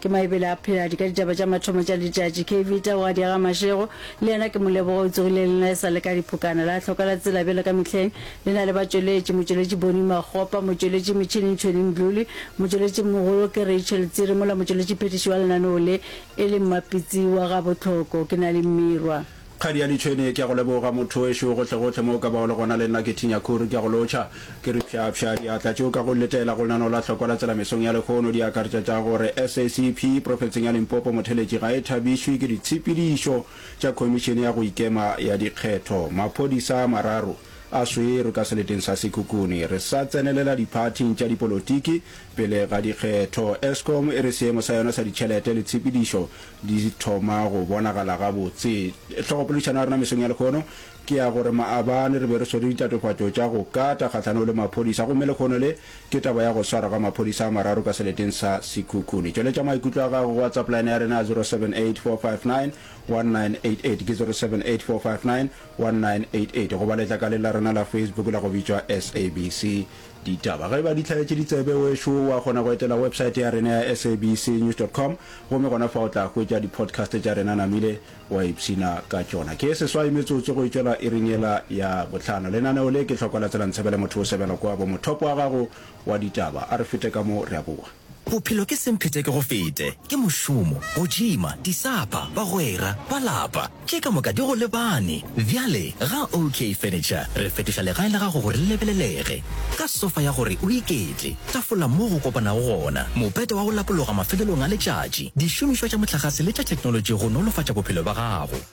Ke Maebele a phela di ka ditaba tša mathomo tša letšatši. Ke Evita wa Diega Mašego, le yena ke Moleboge o tsogile le nna e sa le ka diphokana. La hloka la tsela bjalo ka mehleng, le na le batšweletši, motšweletši Bonnie Makgopa, motšweletši metšhineng Tshweni Mdluli, motšweletši mogolo ke Rachel Tsiri mola motšweletši phethiši wa lenaneo le e le Mmapitsi wa ga Botlhoko. Ke na le mmirwa. Kgadi ya Ditšhwene, ke a go leboga mothowešu, gohlegohle mo o ka bago le gona le nna ke thinya khuru, ke a go lotšha. Ke re pšhapšha, diatla tše o ka go letela go lenaneo la hlokwa la tselamesong ya lehono di akaretša tša go re SACP profenseng ya Limpopo motheletši ga e thabišwe ke ditshepedišo tša khomišene ya go ikema ya dikgetho. Maphodisa a mararo a swerwe ka seleteng sa Sekhukhune re sa tsenelela diphathing tša dipolotiki pele ga dikgetho. Eskom e re seemo sa yona sa ditšhelete le tshepedišo Di thoma go bonagala gabotse. Hlogopoledišano ya rena mesong ya lekhono ke ya gore maabane re be re swere ditatofatšo tša go kata kgahlanong le maphodisa gomme lekhono le ke taba ya go swarwa ga maphodisa a mararo ka seleteng sa Sekhukhune. Tšweletša maikutlo a gago go WhatsApp line ya rena ya 0784591988 ke 0784591988 goba letlakaleng la rena la Facebook la go bitšwa SABC Ditaba ge e ba di hlaetše ditsebe, wešo wa kgona go etela websaete ya rena ya sabcnews dot com gomme gona fa o tla hwetša dipodcast tša rena namile wa ipshina ka tšona. Ke seswai metsotso go e tšwela iring yela ya bohlano. Lenaneo le ke Hloko la Tsela Ntsebele Motho o sebela kwa bo mothopo wa gago wa ditaba. A re fete ka mo re a boa. Bophelo ke semphetekegofete, ke mošomo, go tšhima, disapa, bagwera, ba lapa, tše ka moka di go lebane. Bjale ga OK Furniture re fetoša legae la gago gore le lebelelege, ka sofa ya gore o iketle, tafola moo go kopanago gona, mopete wa go lapologa mafelelong a letšatši, dišomišwa tša mohlagase le tša theknolotši go nolofatša bophelo bja gago.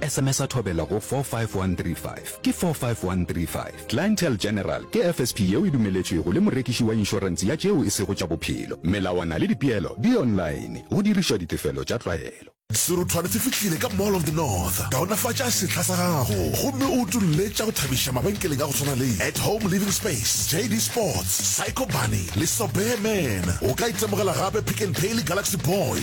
Sms-a thobela go 45135. Ke 45135. Clientele General ke FSP yeo e dumeletšwego le morekiši wa inšorense ya tšeo e sego tša bophelo. Melawana le dipeelo di online. Go dirišwa ditefelo tša tlwaelo. Serothwane se fihlile ka Mall of the North. Kaonafatša sehla sa gago gomme o utolle tša go thabiša mabenkeleng a go swana le At Home Living Space, JD Sports, Psycho Bunny le Sobeya Man. O ka itemogela gape Pick n Pay le Galaxy Boy.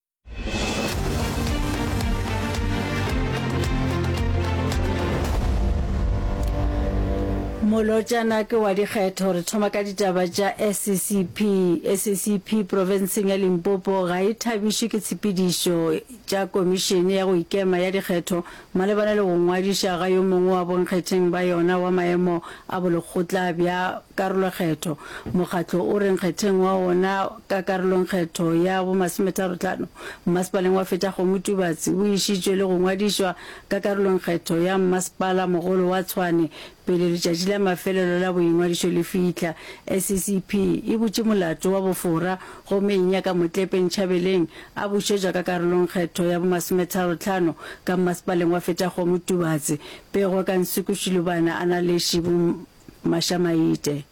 molotšana ke wa dikgetho re thoma ka ditaba tša saccp saccp profenseng ya limpopo ga e thabišwe ke tshepedišo tša komišene ya go ikema ya dikgetho Malebana le go ngwadiša ga yo mongwe wa bonkgetheng ba yona wa maemo a bolekgotla bja karolokgetho, mokgatlo o re nkgetheng wa wona ka karolongkgetho ya bomasometharotlhano mmasepaleng wa Fetšakgomo-Tubatse o išitšwe le go ngwadišwa ka karolongkgetho ya mmasepala mogolo wa Tshwane Pele letšatši la mafelelo la boingwadišo le fihla, SCCP e butše molato wa bofora gomme e nyaka Motlepe Nchabeleng a bušetšwa ka karolong kgetho ya bomasometharo-tlhano ka mmasepaleng wa Fetaggomo Tubatse, Pego ka Nsuku Shilubana a na le Shibu Mashamaite.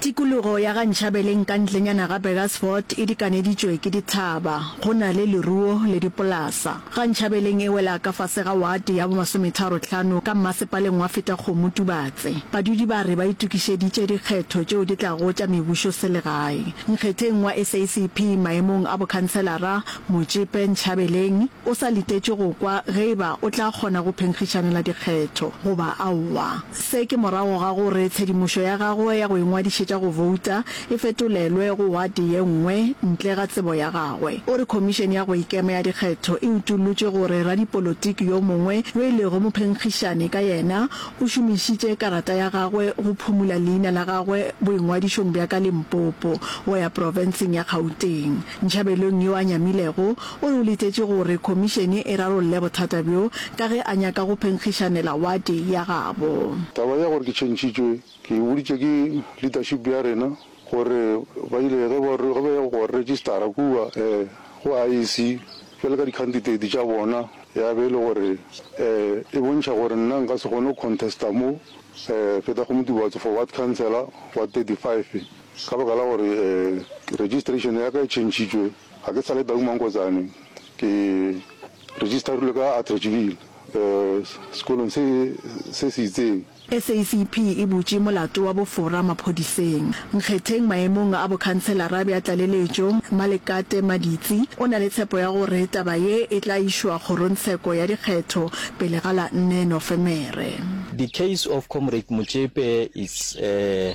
Tikologo ya ga Nchabeleng ka ntlenyana ga Burgersfort e dikaneditšwe ke dithaba, go na le leruo le dipolasa. Ga Nchabeleng e wela ka fase ga wate ya bommasometharo tlhano ka mmasepaleng wa Fetakgomo Tubatse. Badudi ba re ba itokišeditše dikgetho tšeo di tlago tša mebušo selegae. Nkgetheng wa SACP maemong a bokhanselara Motšepe Nchabeleng o sa letetše go kwa ge e ba o tla kgona go phenkgišanela dikgetho goba aowa. Se ke morago ga gore tshedimošo ya gagwe ya go ingwadišetša go bouta e fetolelwe go wate ye nngwe ntle ga tsebo ya gagwe. O re Khomišene ya go Ikema ya Dikgetho e utollotše gore radipolotiki yo mongwe yo e lego mophenkgišani ka yena o šomišitše karata ya gagwe go phumula leina la gagwe boingwadišong bja ka Limpopo go ya profenseng ya Gauteng. Nchabelong yo a nyamilego o re o letetše gore khomišene e rarolle bothata bjo ka ge a nyaka go phenkgišanela wate ya gabo. Taba ya gore ke tšhentšhitšwe ke e boditše ke leadership ya rena gore ba ile ge ba re ge ba ya go registera kua go IEC bjalo ka di-candidate tša bona ya be e le gore e bontšha gore nna nka se kgone go contesta mo Phethagomotibatso for ward councillor wa 35. Ka baka la gore registration ya ka e tšhentšhitšwe, ga ke sa le Tau Mankotsane, ke registerilwe ka Atteridgeville, sekolong se se se itseng. SACP e butše molato wa bofora maphodiseng. Nkgetheng maemong a bokhanselara bja tlaleletšo, Mmalekate Maditsi o na le tshepo ya gore taba ye e tla išwa kgorongtsheko ya dikgetho pele ga la nne Nofemere. The case of Comrade Motšepe is a.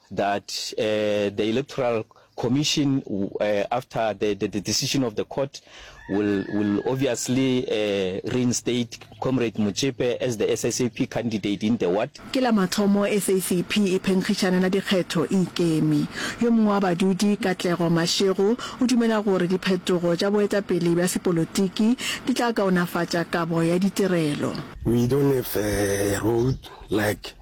that the electoral commission after the, the, the decision of the court will will obviously reinstate comrade Motšepe as the SACP candidate in the ward. Ke la mathomo SACP e phenkgišana la dikgetho e ikeme. Yo mongwe wa badudi, Katlego Mashego, o dumela gore diphetogo tša boetapele bja sepolotiki di tla kaonafatša kabo ya ditirelo. We don't have a road like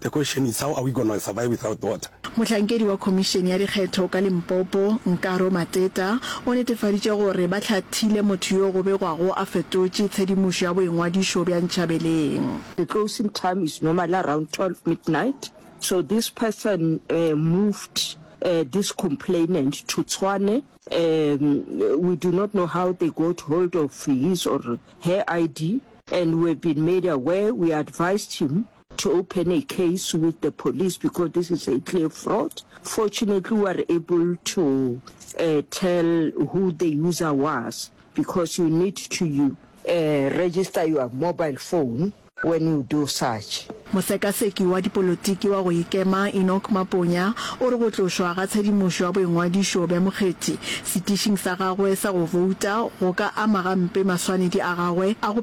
The question is how are we gonna survive without water? Mohlankedi wa Khomišene ya Dikgetho ka Limpopo, Nkaro Mateta, o netefaditše gore ba hlathile motho yo go begwago a fetotše tshedimošo ya boingwadišo bja Nchabeleng. The closing time is normally around 12 midnight, so this person moved this complainant to Tshwane. We do not know how they got hold of his or her ID and we have been made aware, we advised him to open a case with the police because this is a clear fraud. Fortunately, we were able to uh, tell who the user was because you need to you, uh, register your mobile phone when you do such. Mosekaseki wa dipolotiki wa go ikema Enoch Maponya o re go tlošwa ga tshedimošo ya boingwadišo bja mokgethi setišing sa gagwe sa go bouta go ka ama gampe maswanedi a gagwe a go